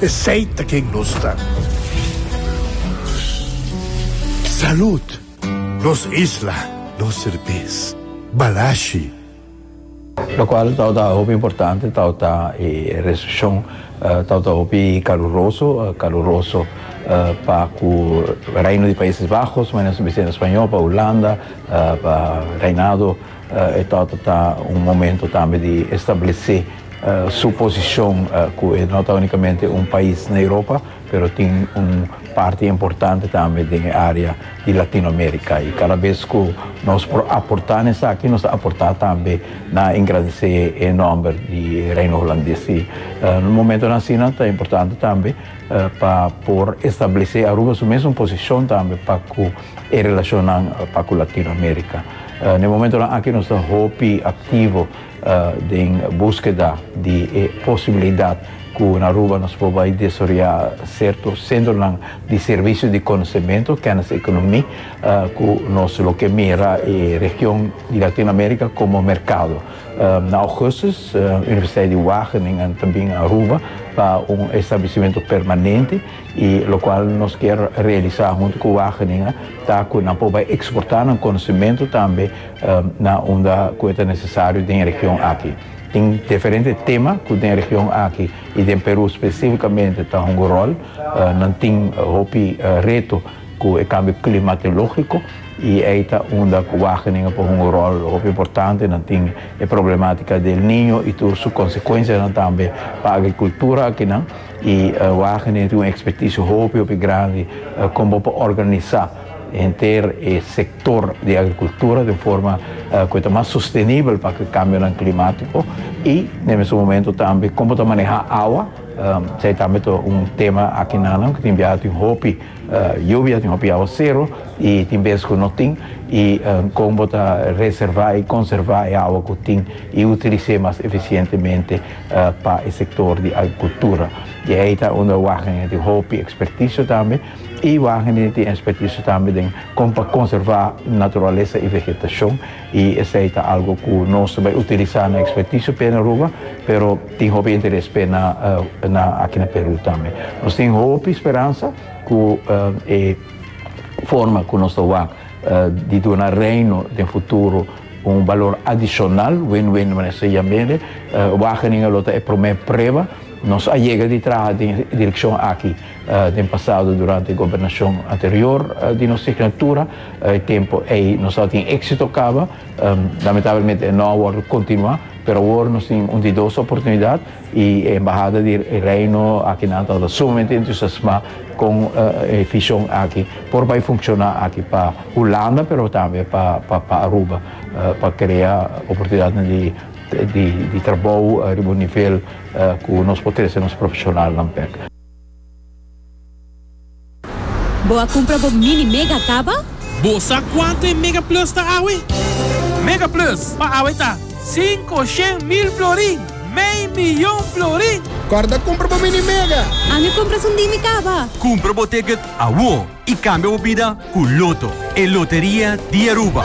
Esey ta ken nos ta. Salud! Nos isla, nos serbes. Balashi. Locual tawata hopi importante tawata e recepcion tawata hopi caluroso, caluroso pa cu Reino di Países Bajos, mane nos bisa na Spañol, pa Hulanda, pa Reinado, e tawata ta un momento tambe di establece Su posishon ku e no ta únikamente un pais na Europa, pero tin un parti importante tambe den e área di Latinoamérika. I kada bes ku nos por aportá na esaki, nos ta aportá tambe na engrandesé e nòmber di e Reino Hulandes. I momentonan asina ta importante tambe pa por establesé Aruba su mesun posishon tambe pa ku e relashonnan pa ku Latinoamérika. Na e momentonan aki nos ta hopi aktivo. den buskeda di e posibilidat ku na Aruba nos por bai desarrolla serto sentronan di servisio di konosementu, kennis ekonomi, ku nos lo ke mira e region di Latinoamerika komo merkado. Na Augustus, Universiteit di Wageningen ta bin Aruba pa un establesimentu permanente, i lokual nos kier realisa huntu ku Wageningen ta ku nan por bai eksportá nan konosementu tambe na unda ku e ta nesesario den e region aki. Tin diferente tema ku den e region aki i den Peru spesífikamente ta hunga ròl. Nan tin hopi reto ku e kambio klimatológiko i ei ta unda ku Wageningen a por hunga ròl hopi importante. Nan tin e problemátika di El Niño i tur su konsekuensianan tambe pa agrikultura akinan. I Wageningen tin un ekspertisio hopi hopi grandi kon bo por organisá henter e. sector di agricultura den forma cu e ta mas sostenibel pa cu e cambionan climatico y na e mesun momento tambe como ta maneha awa, esey tambe ta un tema aki nanan cu tin biaha tin hopi yubia, tin hopi aguacero y tin bes cu no tin y con bo ta reserva y conserva e awa cu tin y utilis'e mas eficientemente pa e sector di agricultura y ey ta unda wagen tin hopi experticio tambe. I Wageningen tin expertiso tambe den kon pa konservá naturalesa i vegetashon i esei ta algo ku nos ta bai utilisá na expertiso p'e na Aruba pero tin hopi interes p'e na aki na Perú tambe. Nos tin hopi speransa ku e forma ku nos ta wak di duna Reino den futuro un balor adishonal, win-win manera esei ya mire Wageningen lo ta e promé prueba nos a yega di traha den e direkshon aki. Den pasado durante gobernacion anterior di nos signatura e tempo ey nos a tin exito caba, lamentablemente e no a wordo continua, pero awor nos tin un di dos oportunidad y e embahada di Reino akinan tabata sumamente entusiasma con e vision aki por bay funciona aki pa Hulanda pero tambe pa Aruba pa crea oportunidadnan di trabou riba un nivel cu nos por trece nos profesionalnan bek. Bo a cumpra bo mini mega caba? Bo sa cuanto e Mega Plus ta awe? Mega Plus pa awe ta cinco shen mil florin, mei miyon florin! Corda cumpra bo mini mega! An e compras un dimi caba? Cumpra bo ticket awo y cambia bo bida cu Lotto, e loteria di Aruba!